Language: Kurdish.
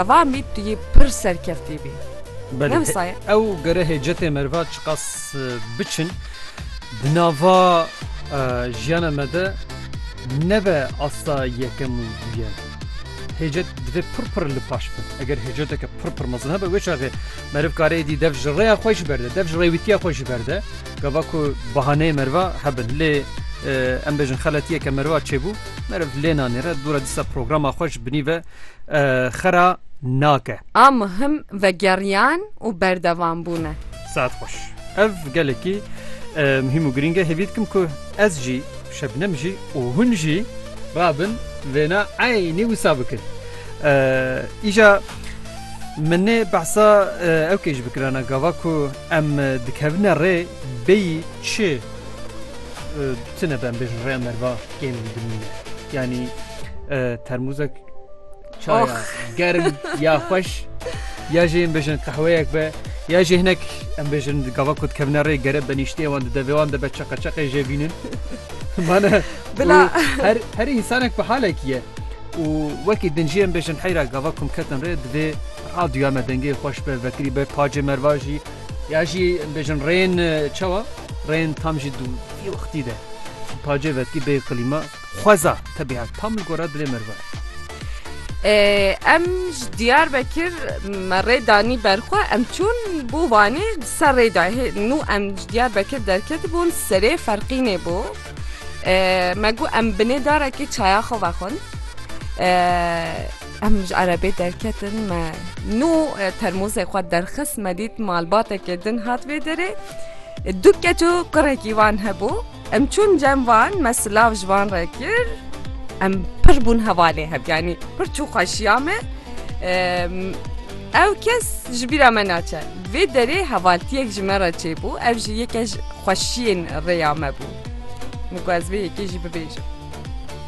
Va mît tu yê pir serkeftî bî. Belê ew gere hêcetê meriva çiqas biçin di nava jiyana me de nebe asta yekem û duyem. Hêcet divê pir pir li paş bin. Eger hêceteke pir pir mezin hebe wê çaxê meriv karê dî dev ji rêya xwe jî berde, dev ji rêwîtiya xwe jî berde. Gava ku bahaneyê meriva hebin lê em bêjin xeletiyeke meriva çêbû meriv lê nanêre dûra dîsa programa xwe ji binî ve xera nake. A muhim vegeriyan û berdevam bûn e. Saet xweş. Ev gelekî muhîm û girîng e. Hêvî dikim ku ez jî, Şebnem jî û hûn jî rabin vêna eynî wisa bikin. Îja min nê behsa ew kêj bikirana gava ku em dikevine rê bêyî çi Tune ben bê ji rêya merva kêm jî dimîne. Yanî termûzek çaya germ ya xweş ya jê em bêjin qehweyek be ya jê hinek em bêjin gava ku dikevne rê gere benîştê wan di devê wan de be çeqeçeqê jê bînin. Mane Bila her her insanek bi halekî ye. û wekî din jî em bêjin heyra gava kum ketin rê divê radyoya me dengê xweş be vekirî be pacê merva jî ya jî bêjin rên çawa rên tam jî Di wextî de pacê vetkî bê qilîma xweza tebîet tam li gora dilê meriva ye. Em ji Diyarbekir me rê danî ber xwe em çûn bo Wanê di ser rê de hê nû em ji Diyarbekir derketibûn serê Ferqînê bû me got em binê darekê çaya xwe vexwin. Em ji erebê derketin me nû termozê xwe derxist me dît malbateke din hat vê derê. Du keç û kurekî wan hebû. Em çûn cem van me silav ji van re kir. Em pir bûn hevalê heb yanî pir çû xweşiya me. Ew kes ji bîra me naçe. Vê derê hevaltiyek ji me re çêbû ev ji yeke ji xweşiyên rêya me bû. Min ku ez vê yekê jî bibêjim.